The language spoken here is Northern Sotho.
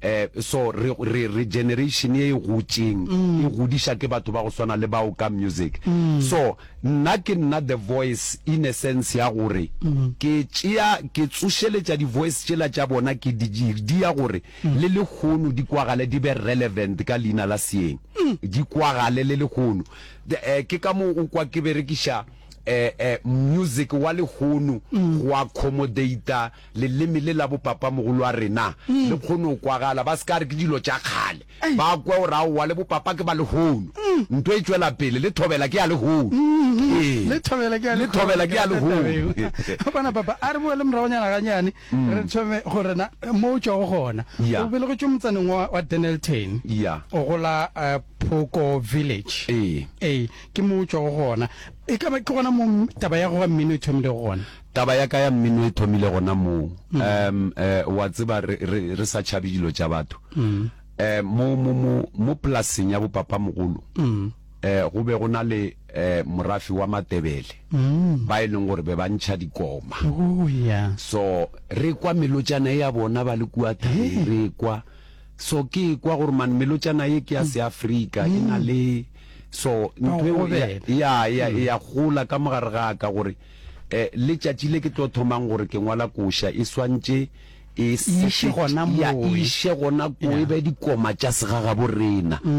eh, so re, re, re generation e gotšeng e godiša ke batho ba go swana le bao ka music so nna ke nna the voice in a sense ya gore ke tšea ke tsošeletša di voice tšela tša bona ke di di- di ya gore le lehono di kwagale di be relevant ka leina la seeng di kwagale le lehono The- eh, ke ka moo o kwa ke berekiša eh, eh, music wa lehono go accommodata Leleme le la bopapamogolo wa rena le kgone go kwagala, ba se ka re ke dilo tša kgale, ba kwe gore aowa le bopapa ke ba lehono. Nto e tšwela pele, le thobela ke ya lehono. Ee, Le thobela ke ya le thobela ke ya lehono. Bona papa, a re boele moragonyana ganyane re thome go rena mo o tšwago gona. Ya. O belegetšwe motsaneng wa wa Dennilton. Ya. O gola eh, Phoko Village. Ee. Ee, ke mo o tšwago gona. E ka ba ke gona mo taba ya go ga mmino e thomilego gona. Taba ya ka ya mmino e thomile gona moo, um wa tseba, re, re, re sa tšhabe dilo tša batho. Um mo, mo, mo, mo polaseng ya bopapamogolo, um go be go na le um morafe wa Matebele, ba e leng gore be ba ntšha dikoma. So re kwa melotšana e ya bona ba le kua thabeng, re e kwa. So ke e kwa gore man melotšana ye ke ya Seafrika, e na le, so ntho eo ya, ya, ya, ya gola ka mo gare ga ka gore. E, letšatši le ke tlo thomang gore ke ngwala koša e swantše e iše gona moe, e iše gona koe, yeah. be dikoma tša segagaborena. Mm.